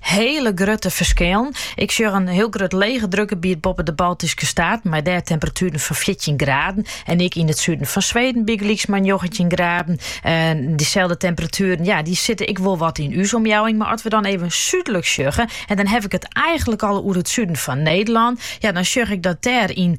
Hiele grutte ferskillen. Ik sjoch in hiel grut legedrukgebiet boppe de Baltyske staten mei dêr temperatueren fan fjirtjin graden. En ek yn it suden fan Sweden bygelyks mar njoggentjin graden. En dyselde temperatueren ja, dy sitte ek wol wat yn ús omjouwing. Mar as we dan even súdlik sjogge, en dan haw ik it eigenlik al oer it suden fan Nederlân, ja, dan sjoch ik dat dêr yn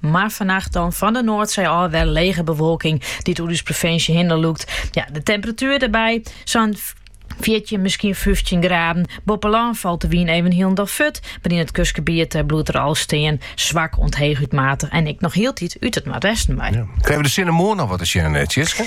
Mar fannacht dan fan de Noardsee ôf wer lege bewolking dy't oer ús provinsje hinne lûkt. Ja, de temperatuer dêrby, sa'n 14, miskien 15 graden. Boppe lân falt de wyn even hielendal fut, mar yn it kustgebiet eh, bliuwt er wol stean. Swak oant heechút matich en ek noch hieltyd út it noardwesten mei. Krije we de sinne moarn noch wat te sjen, eh, Tjitske?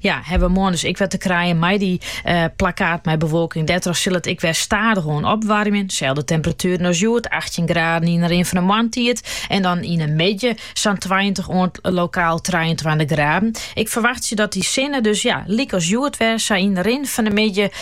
Ja, hawwe we moarn dus ek wer te krijen mei dy eh, plakkaten mei bewolking. Dêrtroch sil it ek wer stadichoan opwaarmje. Selde temperatueren as hjoed, 18 graden yn de rin fan de moarntiid. En dan yn de middei sa'n 20 oant lokaal 23 graden. Ik ferwachtsje dat dy sinne dus ja, lykas hjoed wer sa yn de rin fan de middei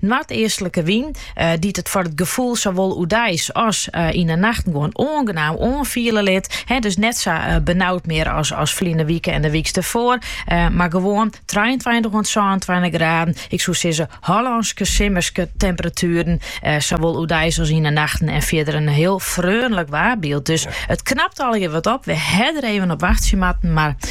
Noardeastlike wyn, dy't it foar it gefoel sawol oerdeis as yn 'e nachten gewoan oangenaam oanfiele lit. Dus net sa benaud mear as ferline wike en de wyks derfoar, mar gewoan trijeentweintich oant sânentweintich graden. Ik soe sizze Hollânske simmerske temperatueren, sawol oerdeis as yn 'e nachten en fierder in hiel freonlik waarbyld. Dus it knapt allegear wat op. We hawwe der even op wachtsje moatten, mar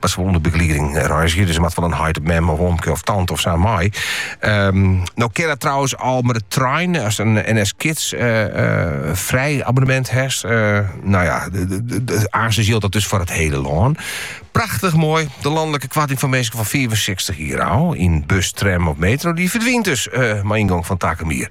Mar se wol ûnder begelieding reizgje, dus er moat wel in heit op mem of omke of tante of sa mei. Ehm, no kin dat trouwens al met de trein, as een NS Kids vrij abonnement hebt. nou ja, aanzien geldt dat dus voor het hele land. Prachtig mooi. De landelijke kwarting van mensen van 64 hier al. In bus, tram of metro. Die verdwijnt dus, uh, mijn ingang van Takemier.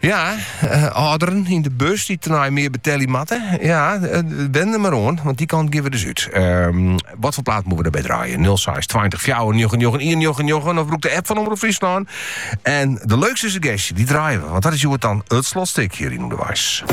Ja, âlderen yn de bus dy't tenei mear betelje moatte. Ja, wen der mar oan, want dy kant gean we dus út. Ehm, wat foar plaat moatte we derby draaie? 06 20 94 99 199 of brûk de app fan Omrop Fryslân. En de leukste suggestje, dy draaie we, want dat is hjoed dan it slotstik hjir yn Underweis.